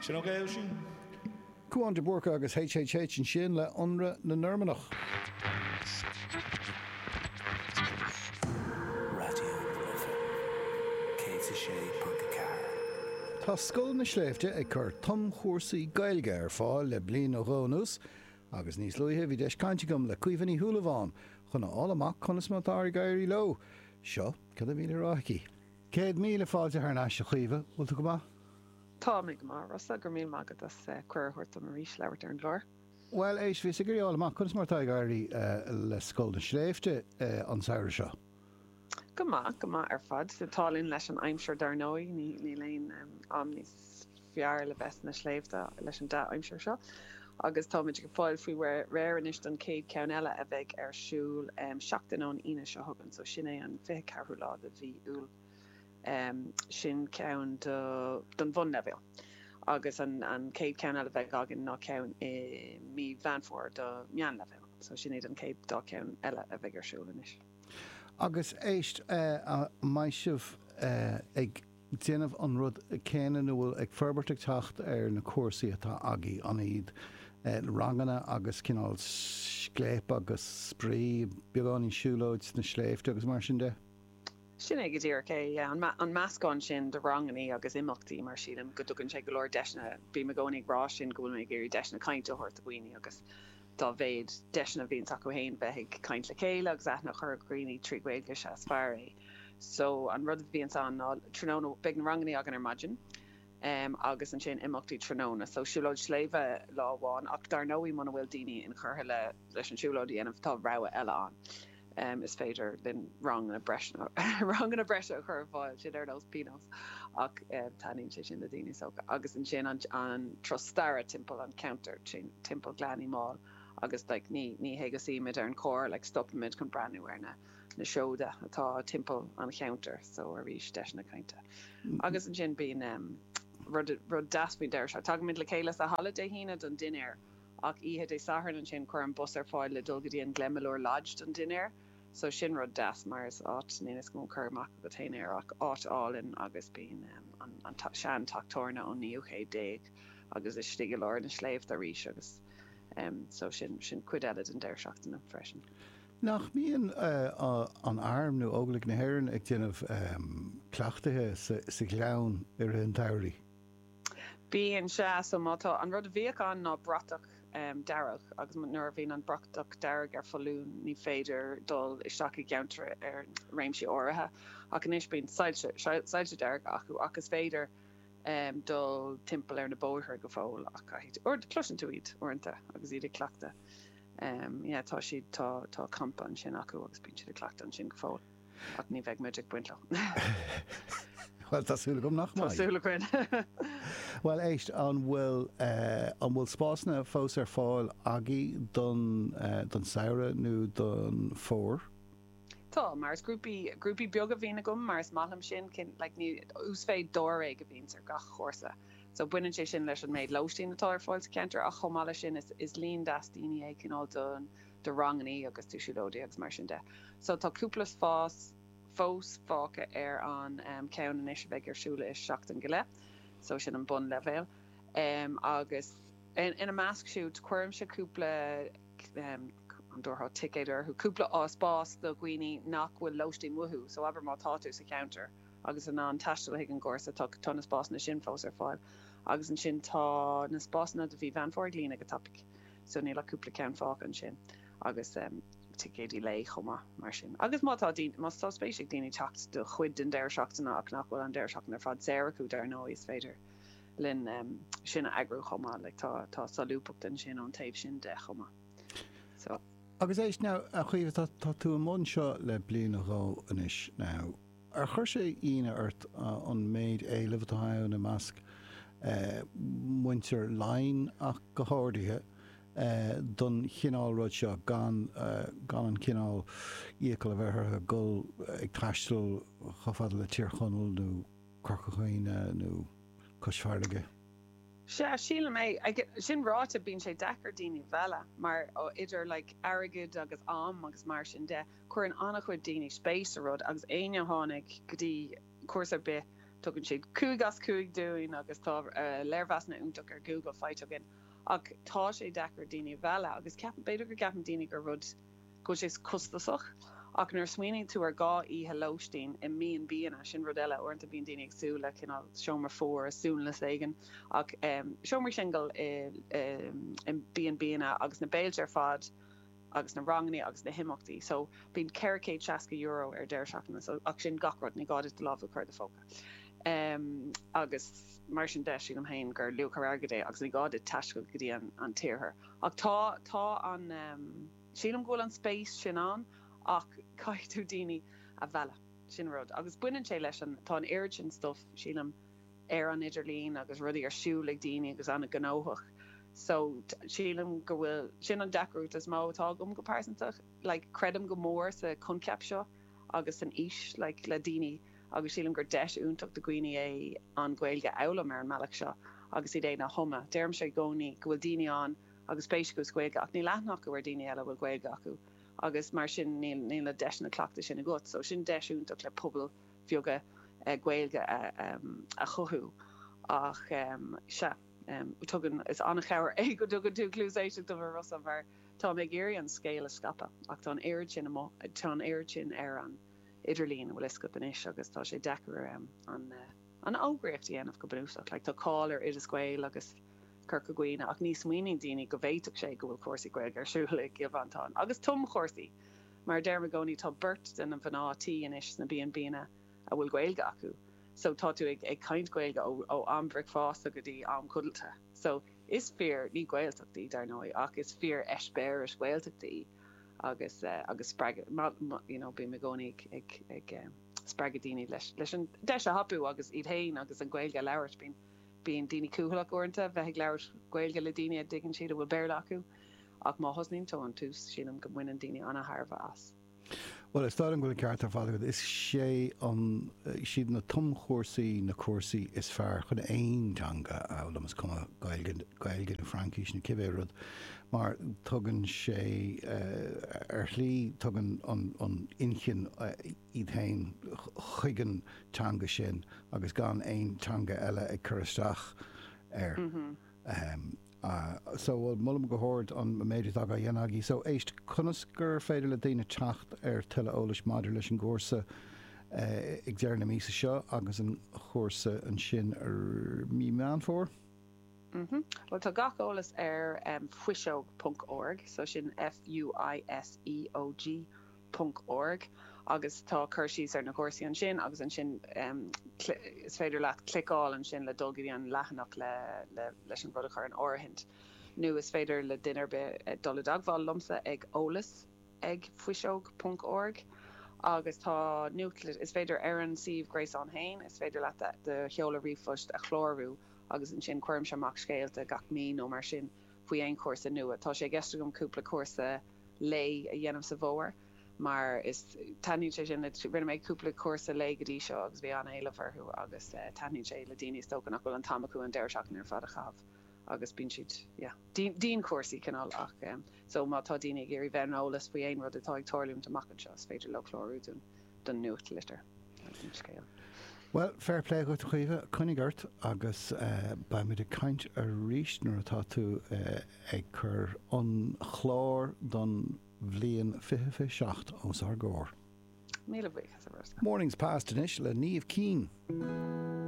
Sin ok, Oisín? Cúán de Búrca agus HHH ansin le ionradh na Normannach. Raidió na Life 106.4. Tá Scoil na Sléibhte ag cur tumchúrsaí Gaeilge ar fáil le bliain nó dhó anuas agus níos luaithe bhí deis caint agam le Caoimhe Ní Shúilleabháin chun a fháil amach conas mar atá ag éirí leo. Seo cad a bhí le rá aici. Céad míle fáilte thar n-ais a Chaoimhe, bhfuil tú go maith? Tá mé go maith a Rossa, go raibh míle maith agat as cuireadh a thabhairt dom arís labhairt ar an gclár. Bhuel, éist, bhíos ag iarraidh fháil amach conas mar atá ag éirí le Scoil na Sléibhte an samhradh seo? Go maith, go maith ar fad. Tá an t-ádh linn leis an aimsir dar ndóigh, níl aon am níos. fearr le bheith sna sléibhte leis an dea-aimsir seo agus táimid ag fáil faoi réir anois don chéad ceann eile a bheidh ar siúl seachtain ón Aoine seo chugainn so sin é an fiche ceathrú lá de mhí Iúil sin ceann do don bhunleibhéal agus an an chéad ceann eile bheidh againn ná ceann i mí Mheán Fómhair do meánleibhéal so sin iad an chéad dá ceann eile a bheidh ar siúl anois. Agus éist eh an mbeidh sibh eh ag. déanamh an rud céanna nó bhfuil ag forbairt ag teacht ar na cúrsaí atá agaibh, an iad ranganna agus cineál scléip agus spraoi, beagáinín siúlóid sna sléibhte agus mar sin de? Sin é go díreach é, yeah. An meascán sin de rangannaí agus imeachtaí mar sílim go dtugann sé go leor deiseanna, bím i gcónaí ag rá sin go bhfuil mé ag iarraidh deiseanna cainte a thabhairt do dhaoine agus dá mhéad deiseanna a bhíonns acu fhéin bheith ag caint le chéile agus aithne a chur ar dhaoine trí Ghaeilge is ea is fearr é. So an rud a bhíonns ann ná tráthnóna beidh na rangannaí againn ar maidin agus ansin imeachtaí tráthnóna. So siúlóid sléibhe lá amháin ach dar ndóigh muna bhfuil daoine inchurtha leis an siúlóid a dhéanamh tá rogha eile ann. Is féidir linn ranganna breise a chur ar fáil, sin ar nós pionós ach taitníonn sé sin le daoine is dócha. Agus ansin an turas staire timpeall an cheantair, timpeall Gleann Uí Mháil agus like ní hé go suímid ar an coach like stopaimid chun breathnú ar na na seoda atá timpeall an cheantair so arís deiseanna cainte agus ansin bíonn em rud rud deas faoin deireadh seachtaine tagaimid le chéile sa halla Dé hAoine don dinnéar ach oíche Dé Sathairn ansin cuirim bus ar fáil le dul go dtí an Glenmalure Lodge don dinnéar so sin rud deas mar is áit níl fhios agam cur amach agat féin air ach áit álainn agus bíonn em an an sean teach tabhairne ón naoú céad déag agus istigh i lár na sléibhte arís agus em so sin sin cuid eile den deireadh seachtaine freisin. Nach mbíonn an Arm nó Óglaigh na hÉireann ag déanamh cleachtaithe sa Ghleann i rith an tsamhraidh? Bíonn, sea. So mar atá, an rud a bhíodh ann ná bratach dearg agus nuair a bhíonn an bratach dearg ar foluain ní féidir dul isteach i gceantar nó réimsí áirithe ach anois bíonn soilse, soilse dearga acu ach is féidir dul timpeall ar na bóithre go fóill ach caithfidh, cloiseann tú iad uaireanta agus iad ag cleachtadh. Yeah tá siad tá tá campa ansin acu agus bíonn siad ag cleachtadh ansin go fóill ach ní bheidh muid ag baint leo. Bhuel tá súil agam nach mbeidh. Tá súil againn. Bhuel éist an bhfuil eh an bhfuil spásanna fós ar fáil agaibh don eh don samhradh nó don fómhar? Tá, mar is grúpaí, grúpaí beaga a bhíonn agam mar is maith liom sin, cinn, like ní, uasmhéid dáréag a bhíonns ar gach chúrsa. So baineann sé sin leis an méid lóistín atá ar fáil sa cheantar ach chomh maith leis sin is, is líon deas daoine é cineál do, do rangannaí agus do siúlóidí agus mar sin de. So tá cúpla spás fós fágtha ar an ehm cheann anois a bheidh ar siúl i gceann seachtain go leith. So sin an bun leibhéal. Ehm agus in, ina measc siúd cuirimse cúpla ehm, an dtabharfá ticéad orthu, cúpla spás do dhaoine nach bhfuil lóistín uathu, so abair má tá tú sa cheantar agus in ann taisteal chuig an gcúrsa, tá tá na spásanna sin fós ar fáil. Agus ansin tá na spásanna do mhí Mheán Fómhair ag líonadh go tapaidh, so níl ach cúpla ceann fágtha ansin agus em ticéidí lae chomh maith mar sin. Agus má tá daoine, má tá spéis ag daoine teacht do chuid den deireadh seachtaine ach nach bhfuil an deireadh seachtaine ar fad saor acu dar ndóigh is féidir linn em sin a eagrú chomh maith like tá tá solúbthacht ansin ón taobh sin de chomh maith. Agus éist now, a Chaoimhe, tá tú i mbun seo le bliain nó dhó anois now. Ar chuir sé ionadh ort an méid éilimh atá ann i measc muintir Laighin ach go háirithe don chineál rud seo gan an cineál iachall a bheith orthu dhul ag taisteal chomh fada le Tír Chonaill nó Corca Dhuibhne nó Cois Fharraige? Sea, sílim é. Sin ráite, bíonn sé deacair daoine a mhealladh maidir le like airgead agus am agus mar sin de, cuireann an-chuid daoine spéis sa rud agus éinne a tháinig go dtí cúrsa ar bith, tugann siad cúig as cúig dúinn agus tá léirmheasanna iontacha ar Google faighte againn ach tá sé deacair daoine a mhealladh agus ceapaim, b'fhéidir go gceapann daoine gur rud. go bhfuil sé costasach ach nuair a smaoiníonn tú ar dhá oíche lóistín i B&Banna, sin rud eile. Uaireanta bíonn daoine ag súil le cineál seomra fuar i suanlios éigin ach seomraí singil i B&Banna agus na béilte ar fad agus na rangannaí agus na himeachtaí so bíonn ceithre chéad seasca euro ar deireadh seachtaine so ach sin gach rud, ní gá duit do lámh a chur i do phóca agus mar sin de, sílim féin gur luach ar airgead é agus ní gá duit taisteal go dtí an t-iarthar ach tá, tá an. Sílim go bhfuil an spéis sin ann ach caithfidh tú daoine a mhealladh. Sin an rud. Agus baineann sé leis an, tá an oiread sin stuff, sílim, ar an idirlíon agus rudaí ar siúl ag daoine agus an-ghnóthach, so sílim go bhfuil, sin an deacracht is mó atá agam go pearsanta. Like, creidim go mór sa choincheap seo agus san fhís le daoine agus sílim gur deis iontach do dhaoine é an Ghaeilge a fhoghlaim ar an mbealach seo agus iad féin a thumadh. Deirimse i gcónaí go bhfuil daoine ann, agus spéis acu sa Ghaeilge ach níl aithne acu ar daoine eile a bhfuil Gaeilge acu agus mar sin níl na deiseanna cleachtaidh sin agat so sin deis iontach le pobail bheaga Gaeilge a chothú ach sea tugann is an-chabhair é go dtugann tú cluas éisteachta domhsa mar tá mé ag iarraidh an scéal a scaipeadh ach tá an oiread sin amu tá an oiread sin ar an idirlíon an bhfuil fhios agat anois agus tá sé deacair an fhógraíocht a dhéanamh go bunúsach like tá cáil ar Oideas Gael agus Corca Dhuibhne, ach ní smaoiníonn daoine go bhféadfadh sé go bhfuil cúrsaí Gaeilge ar siúl i gCill Mhantáin, agus tumchúrsaí! Mar a deirim i gcónaí, tá beirt de na mhná tí anois sna B&Bnna a bhfuil Gaeilge acu, so tá tú ag caint Gaeilge ó am bhricfeásta go dtí am codlata. So, is fíor, ní Gaeltacht í, dar ndóigh, ach is fíor eispéireas Gaeltachta é agus agus spreagadh, you know, bím i gcónaí ag ag spreagadh daoine leis leis an deis a thapú agus iad fhéin agus an Ghaeilge a labhairt. Bíonn. Bíonn daoine cúthaileach uaireanta bheith ag labhairt Gaeilge le daoine a dtuigeann siad a bhfuil Béarla acu, ach má thosnaíonn tú ón tús, sílim go mbaineann daoine an-thairbhe as. Bhuel, is dóigh liom go bhfuil an ceart ar fad agat. Is sé an, siad na tumchúrsaí na cúrsaí is fearr chun aon teanga a fhoghlaim, is cuma Gaeilg, Gaeilge nó Fraincis nó cibé rud, mar tugann sé, ar shlí, tugann an, an inchinn, iad fhéin chuig an teanga sin agus gan aon teanga eile ag cur isteach air. Ahem. So, bhuel, molaim go hard an méid atá á dhéanamh agaibh. So, éist, conas gur féidir le daoine teacht ar tuilleadh eolais maidir leis an gcúrsa ag deireadh na míosa seo agus an chúrsa ansin ar Mí Meán Fómhair? Ahem. Bhuel, tá gach eolas ar em, fuiseog ponc org. So, sin F-u-i-s-e-o-g. ponc org agus tá cur síos ar na cúrsaí ansin agus ansin is féidir leat cliceáil ansin le dul go dtí an leathanach leis an rud a chur in áirithint nó is féidir le duine ar bith dul i dteagmháil liomsa ag eolas ag fuiseog ponc org agus tá nuachtlitir is féidir ar an suíomh gréasáin féin is féidir leat do sheoladh ríomhphoist a chlárú agus ansin cuirimse amach scéalta gach mí nó mar sin. faoi aon chúrsa nua. Tá sé i gceist agam cúpla cúrsa lae a dhéanamh sa bhfómhar mar is taitníonn sé sin le, rinne mé cúpla cúrsa lae go dtí seo agus bhí an-éileamh orthu agus taitníonn sé le daoine is dócha nach bhfuil an t-am acu an deireadh seachtaine ar fad a chaitheamh agus bíonn siad yeah dianchúrsaí cineál ach em so má tá daoine ag iarraidh bheith ar an eolas faoi aon rud atá ag tarlúint amach anseo is féidir leo clárú don. don nuachtlitir, don scéal. Bhuel, fair play dhuit a Chaoimhe, coinnigh ort agus beidh muid ag caint arís nuair atá tú ag cur an chláir don bhliain fiche fiche seacht os ár gcomhair. Míle buíochas a Rónáin. Mornings Past anois le Niamh Keane.